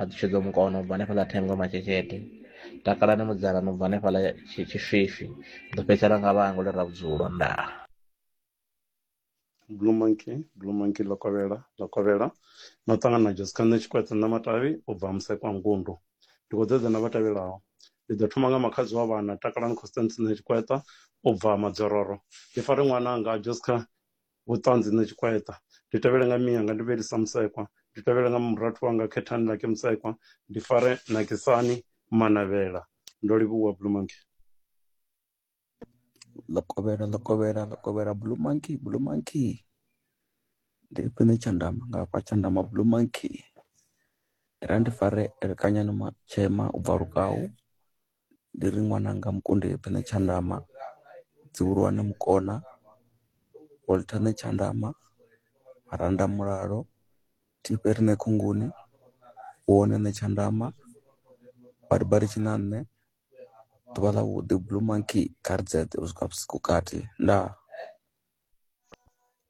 a ḓi tshedza mukono ubva hanefhaḽa thengo matshekete takalani mudzana no bva hanefhaḽa tshifhifi ḓo fhedzisela nga vhango ḽi ra vhudzulo ndaa blue monkey blue monkey ḽo kovhela ḽo kovhela no ṱangana na jessica nṋe tshikwetse nṋe matavhi u bva musekwa ngundu ndi khou dzedza na vha tevhelaho ndi ḓo thoma nga makhadzi wa vhana takalani constance nṋe tshikweta u bva madzororo ndi fare ṅwana anga jessica vhuṱanzi nṋe tshikwaeṱa ndi tevhele nga miyanga ndi vhelisa musekwa ndi tevhele nga murathu wanga khethani lake musekwa ndi fare nakisani manavhela ndo livhuwa blue monkey ḽo kovhela ḽo kovhela ḽo kovhela blue monkey blue monkey ndi khwine tshandama nga fha tshandama blue monkey ndi ra ndi fare elekanyani matshema u bva lukau ndi ri ṅwananga Mukonde eḓa na tshanḓama dzihulwane mukona Walter na tshanḓama maranda mulalo thifhe rine khomboni u wone na tshanḓama badi badi tshiṋaṋne ḓuvha ḽa vhuḓi blue monkey kha ri dzedze u swika vhusiku kati ndaa.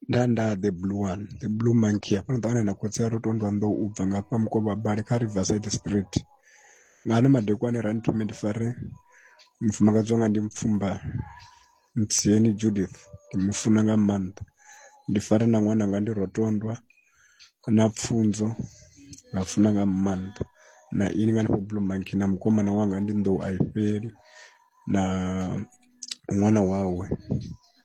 nda nda the blue one the blue monkey hafhano ṱavhana na khotsi a ro to ndwa nḓou u bva nga fha mukovha bale kha riverside street nga ano madekwane ra nthome ndi fare mufumakadzi wanga ndi mpfumba ntsiyeni judith ndi mu funa nga maanḓa ndi fare na ṅwana nga ndi rotondwa na pfunzo nga funa nga maanḓa na ini nga nifho blue monkey na mukomana wanga ndi nḓou a i fheli na ṅwana wawe